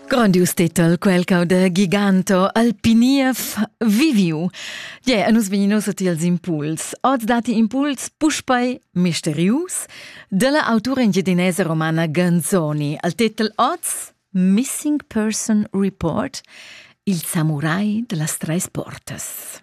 Grondius titel quel cau da Giganto Alpiniev Viviu. Ie, yeah, nus vegnin ussa tiels impuls. Oz dati impuls puspei misterius della autura engiedinese romana Ganzoni. Al titel oz Missing Person Report, il samurai de las treis portas.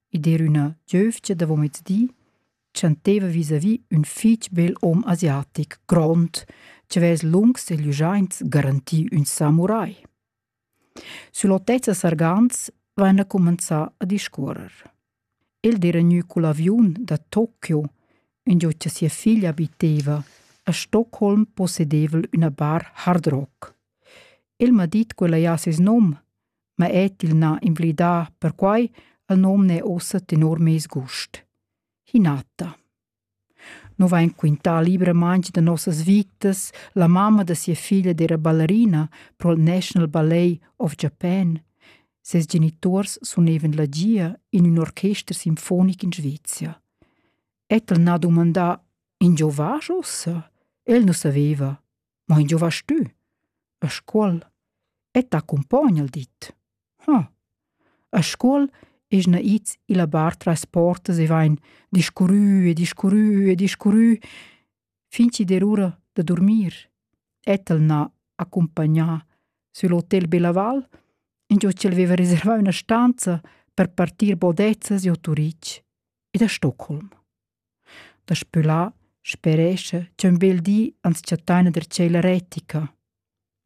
ed er üna giövgia davo mezdi chanteva vis-à-vis ün fich bel hom asiatic grond chi vess lungs e lügiaints garanti ün samurai. Süll'otezza Sargans vaina cumanzà a discuorrer. El d'era gnü cul aviun da Tokio, ingio cha sia figlia abiteva, a Stockholm possedevel üna bar hard rock. El m'ha dit quella ja seis nom ma et il n'ha invlidà perquai el nom n'è ussa tenor meis gust. Hinata. No vain quintà libramaing da nossas vitas la mamma da sia figlia d'era ballerina pro il National Ballet of Japan. Ses genitors sunevan la gia in un orchester sinfonic in Svezia. Et el n'ha dumandà in giovage ossa? El nu saveva. Ma in giovas tü? A scuol? Et t'accompogna il dit. Hm. A scuol es na its illa bar tras portas e vain discurrü e discurrü e discurrü fin chi der ura da durmir. Et el n'ha accompagnà sül hotel Belaval, ingio ch'el veva reservà üna stanza per partir bodezzas giò Turich ed a Stockholm. Daspö là sperescha ch'ün bel di ans chattaina der tschella retica.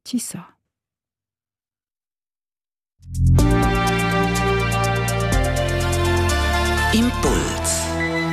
Chi sa? Impuls